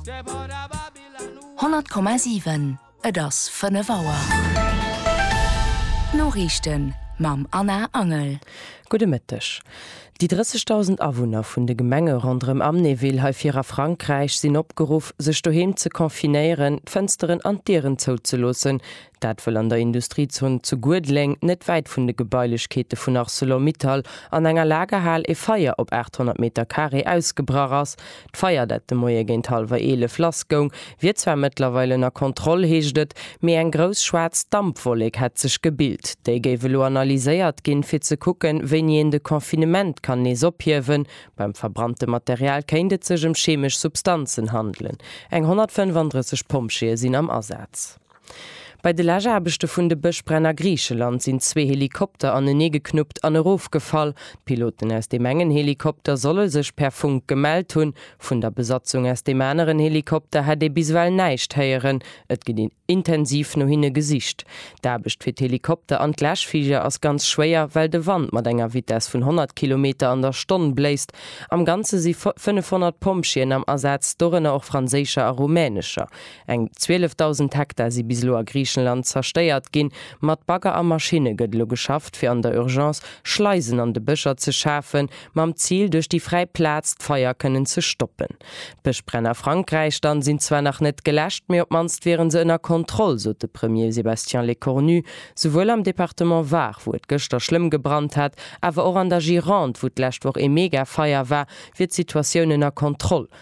100,7 Et ass 5 Auer. D'Noriichten mam Anna Angel. Gudde Mëtteg. Déi 30.000 Awunner vun de Gemenge ronderëm Amnéville hei vir a Frankräich sinn opgeruff, sech doheem ze confinéieren, d'Fënsteren an d'Dieren zouzeloossen, Dat wëll an der Industriezon zu Guedleng, net wäit vun de Gebailechkeete vun Arcelor-Mittal, an enger Lagerhal e Feier op 800 Meter Carré ausgebrach ass. D'Feier, dat de Moie géint hallwer 11 lass goung, wier zwar mëttlerweil ënner Kontroll, heescht et, mee eng grouss schwaarz Dampwollek hätt sech gebilt. Déi géif elo analyséiert ginn, fir ze kucken, wéini een de Confinement kann nees ophiewen. Beim verbrannte Material kéint et sech ëm chemesch Substanzen handelen. Eng 135 Pompjeeë sinn am Asaz. Bei de Läschaarbechte vun de Bëschbränn a Griicheland sinn zwee Helikopter aneneegeknuppt an erofgefall. D'Piloten aus deem engen Helikopter solle sech per Funk gemellt hunn. Vun der Besatzung aus deem aneren Helikopter hätt ee bis ewell näischt héieren. Et gëtt intensiv no hinne gesicht. D'Aarbecht fir d'Helikopter an d'Läschfliger ass ganz schwéier, well de Wand mat enger Vitess vun 100 Kilometer an der Stonn bléist. Am Ganze si 500 Pompjeeën am Asaz, dorënner och franséischer a rumänescher. Eng 12.000 Hektar si bis elo a Griichenland zerstéiert ginn. Mat Bagger a Maschinne gëtt elo geschafft, fir an der Urgence Schleisen an de Bëscher ze schafen, mam Zil, duerch déi fräi Plaz d'Feier kënnen ze stoppen. D'Bëschbränn a Frankräich dann sinn zwar nach net geläscht, mee op d'mannst wieren se ënner Kontroll, sot de Premier Sébastien Lecornu. Souwuel am Departement Var, wou et gëschter schlëmm gebrannt hat, awer och an der Gironde, wou d'lescht Woch ee Megafeier war, wier d'Situatioun ënner Kontroll,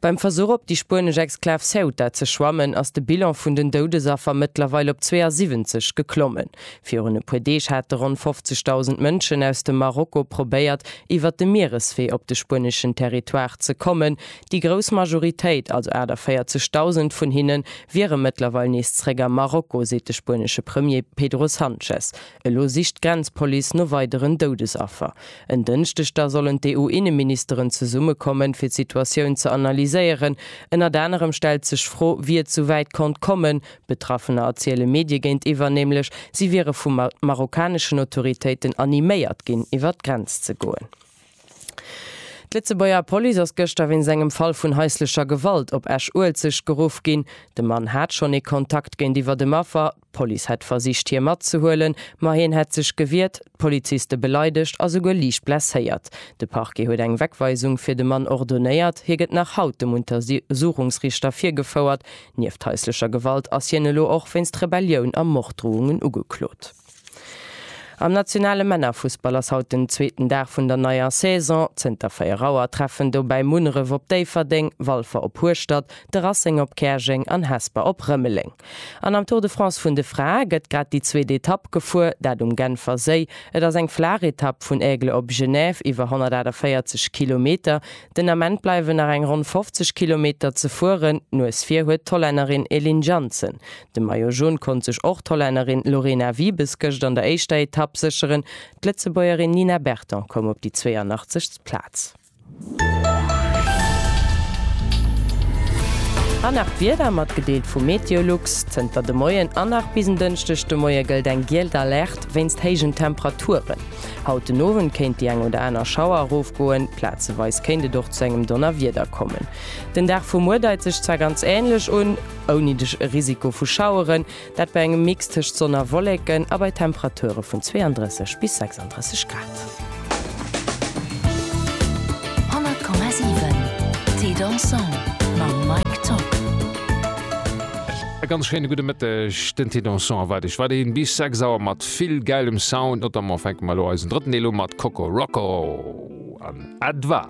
Beim Versuch op déi spuenesch Exklav Ceuta ze schwammen, ass de Bilan vun den Doudesaffer mëttlerweil op 72 geklommen. Virun e puer Deeg hate ronn 50.000 Mënschen aus dem Marokko probéiert, iwwert de Miereswee op de spueneschen Territoire ze kommen. Déi grouss Majoritéit, also 48.000 vun hinne wiere mëttlerweil nees zréck am Marokko, seet de spuenesche Premier Pedro Sanchez. Elo sicht d'Grenzpolice no weideren Doudesaffer. En Dënschdeg da sollen d'EU-Inneministeren zesummekommen, fir d'Situatioun ze analyséieren. Ënnert anerem stellt sech d'Fro, wéi et sou wäit konnt kommen. Betraffener erziele Medie géintiwwer nämlech, si wiere vu marokkaneschen Autoritéiten animéiert ginn, iwwer d'Grenz ze goen. D'Lëtzebuerger Police ass gëschter wéinst engem Fall vun haislecher Gewalt op Esch-Uelzecht geruff ginn. De Mann hat schonn ee Kontakt géintiwwer dem Affer. D'Police hätt versicht hie matzehuelen, ma hien hätt sech gewiert, d'Poliziste beleidegt a souguer liicht blesséiert. De Parquet huet eng Wegweisung fir de Mann ordonéiert. Hie gëtt nach haut dem Untersuchungsriichter virgefouert. Nieft haislecher Gewalt ass hien elo och wéinst Rebellioun a Morddroungen ugeklot. Am nationale Männerfussball ass haut den zweeten Dag vun der neier Saison. Zënter 4 Auer treffen dobäi Munneref op Déifferdeng, Walfer op Hueschtert, de Racing op Käerjeng an Hesper op Rëmeleng. An am Tour de France vun de Frae gëtt grad déi zweet Etapp gefuer, dat um Genfer Séi. Et ass eng flaach Etapp vun Aigle op Genève, iwwer 148 Kilometer. Den Ament bleiwen nach eng ronn 50 Kilometer ze fueren. D'Nues vir huet d'Hollännerin Elin Janssen. De Maillot Jaune konnt sech och d'Hollännerin Lorena Wiebes gëscht an der éischter Etapp sécheren. D'Lëtzebuergerin Nina Berton koum op déi 82. Plaz. An nach d'Wieder, matgedeelt vu MeteoLux. Zënter de Moien an nach bis en Dënschdeg de Moie gëllt eng gielt Alerte wéinst héijen Temperaturen. Haut den Owend kéint déi eng oder aner Schauer erofgoen, plazeweis kéint et och zu engem Donnerwieder kommen. Den Dag vu muer deit sech zwar ganz änlech un, ouni de Risiko vu Schaueren. Dat bei engem Mix tëscht Sonn a Wolleken a bei Temperature vun 32 bis 36 Grad. E ganz schéine gudde Mëtteg, den Thé Dansant erwaart Iech weiderhi bis 6 Auer mat vill gäilem Sound. Notamment fänke mer elo eisen drëtten Deel u mat Coco Roco an Edva.